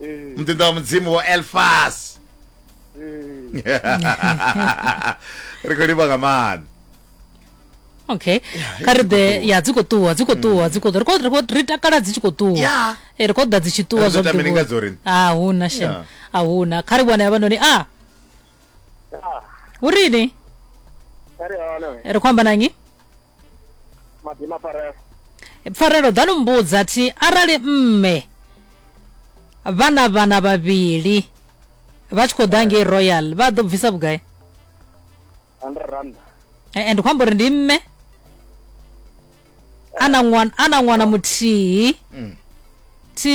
mm. muḓinḓa wa mudzimu wo elfas mm. ri khou livha nga maanḓa okay kha ri ḓe ya dzi khou ṱuwa dzi khou mm. ṱuwa dzi khou ṱuwa ri takala dzi tshi khou ṱuwa eh, ri khou ḓa dzi tshi ṱuwa zwavhuḓi a ah, huna shem a ah, huna kha ri vhona yavhanoni a ah. hu rini ri khou amba na nnyi madima pfarelo pfarelo ḓa ni mbudza thi arali mme vha na vhana vhavhili vha tshi khou ḓa ngei royal vha ḓo bvisa vhugai hundred rand Eh, and khou amba uri ndi mme a na ṅwana a na ṅwana muthihi thi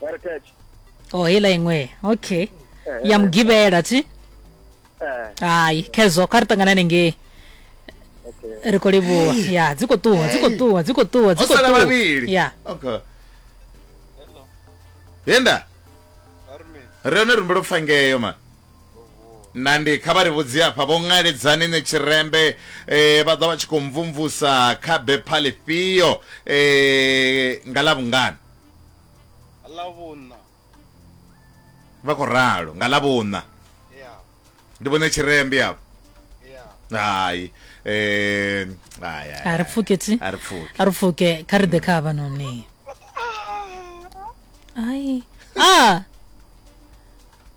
heritage o heiḽa iṅwe okay ya mugivhela thi eh hai khezwo kha ri ṱangana hanengei okay ri khou livhuwa ya dzi khou ṱuwa dzi khou ṱuwa dzi khou ṱuwa dzi ho khou sala ṱuwa vhavhili ya okay yenda ri hone rumbe lupfa ngeyo ma nandi kha vha ri vhudzi afha vho ṅaledzani ne tshirembe eh, vha ḓa vha tshi khou mvumvusa kha bepha ḽifhio eh, nga ḽa vhungana ḽavhuṋa vha khou ralo nga ḽavhuṋa ya ndi vhone tshirembe afho ya hai eh, hai, hai, a ri pfuke tsi a ri pfuke a ri pfuke kha ri ḓe kha havha noni ai a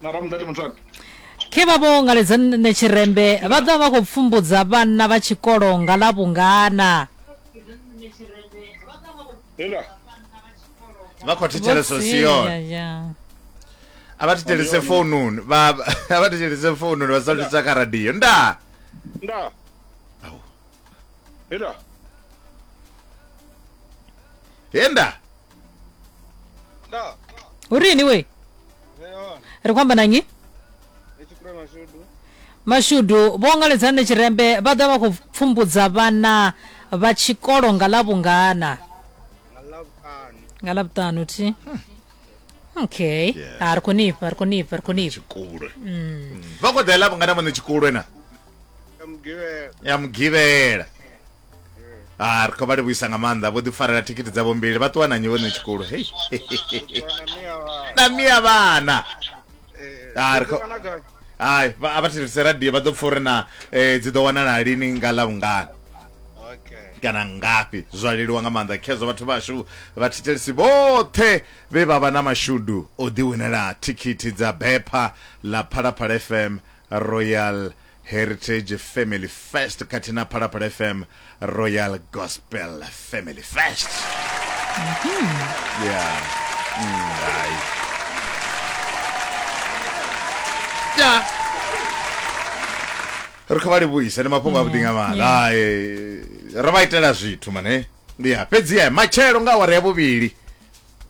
na ramudati mutswani khe vha vho ngaledza nṋe tshirembe vha ḓa vha khou pfumbudza vhanna vha tshikolo nga ḽa vhungana hela vha khou thetshelesa siona Vho sia, a vha thetshelese foununi vha a vha thetshelese foununi vha sa thetsha kha radio nda nda hela he nda Da. urini we Veon. ri khou amba na nnyi Etshi kule mashudu. mashudu vho ngaledzani tshirembe vha ḓa vha khou pfumbudza vhana vha tshikolo nga ḽa vhungana Nga love ano. nga ḽa vhuṱanu thi okay Yeah. a ri khou nifha ri khou nifha ri khou nifha tshikulwe vha khou ḓa ḽa vhungana vhone tshikulwe na Ka mugivhela. ya mugivhela ah ri khou vha livhuisa nga maanḓa vho ḓi farela thikhithi dzavho mbili vha ṱuwa na nyi vhone tshikulu hei na mia vhana ah ri khou hai a vha thetshelese radio vha ḓo pfa uri na eh, dzi ḓo wanala lini nga ḽa vhungana kana ngafhi zwa leluwa nga maanḓa khezwo vhathu vhashu vhathetshelisi vhoṱhe vhe vha vha na mashudu o ḓiwinela thikhithi dza bepha ḽa phalaphala fm royal Heritage Family First khathihi na Phalaphala FM Royal Gospel Family First. Yeah. Mm, hai. Ya. Ri khou vha livhuisa ndi mafhungo a vhuḓi nga maanḓa. Hai. Ro vha itela zwithu mane. Ndi ya fhedzi ya matshelo nga awara ya vhuvhili.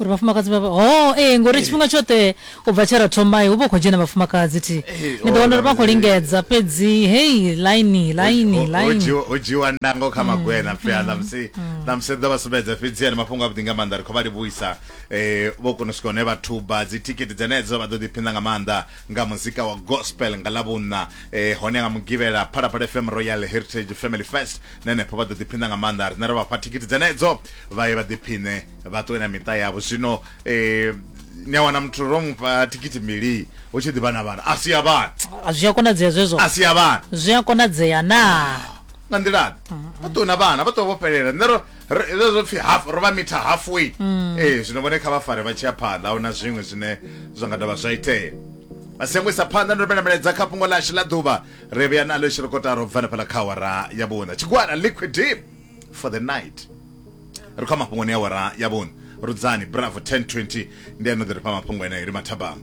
uri vhafumakadzi vha ho oh, ee eh, ngori tshifhinga tshoṱhe u bva tshe ra thoma hu vha u khou dzhena vhafumakadzi thi eh, ni ḓo wana uri vha khou lingedza fhedzi hei laini laini lainiho dzhiwa ndango kha mm, magwena pfe a mm, ṋamusi mm. ṋamusi ḓo vha sumbedza fhedzi ani mafhungo avhuḓi nga maanḓa ri khou vha livhuisa um vho kona u swika hune vha thuba dzithikhithi dzenedzo vha ḓo ḓiphina nga maanḓa nga muzika wa gospel nga ḽavhunna um hone nga mugivhela phalaphala fm royal heritage family fest nenepho vha ḓo ḓiphina nga maanḓa rine ri vha fha thikhithi dzenedzo vha ye vha ḓiphine vha ṱuwe na miṱa yavho zwino eh, ni a wana muthu ro mufha thikhithi mbili hu tshi ḓivha na vhana a si ya vhana Ah, zwi a konadzea zwezwo a si ya vhana zwi a konadzea naa nga nḓilaḓe vha ṱuwe na vhana vha ṱuwe vho fhelela nṋe ro- ro- ro zwo pfhi half ro vha mitha halfway ee zwino vhone kha vha fare vha tshi ya phanḓa a hu na zwiṅwe zwine zwa nga dovha zwa itea vha si yango isa phanḓa ndo rumela milaedza kha fhungo ḽashu ḽa ḓuvha ri vhuya nalo i tshi ri kotara u bva na fhaḽa kha awara ya vhuṋa tshigwada liquid deep for the night ri kha mafhungoni ya wara ya vhoni rudzani bravo 1020 ndi ano ḓi ri fha mafhungo eneo ri mathabama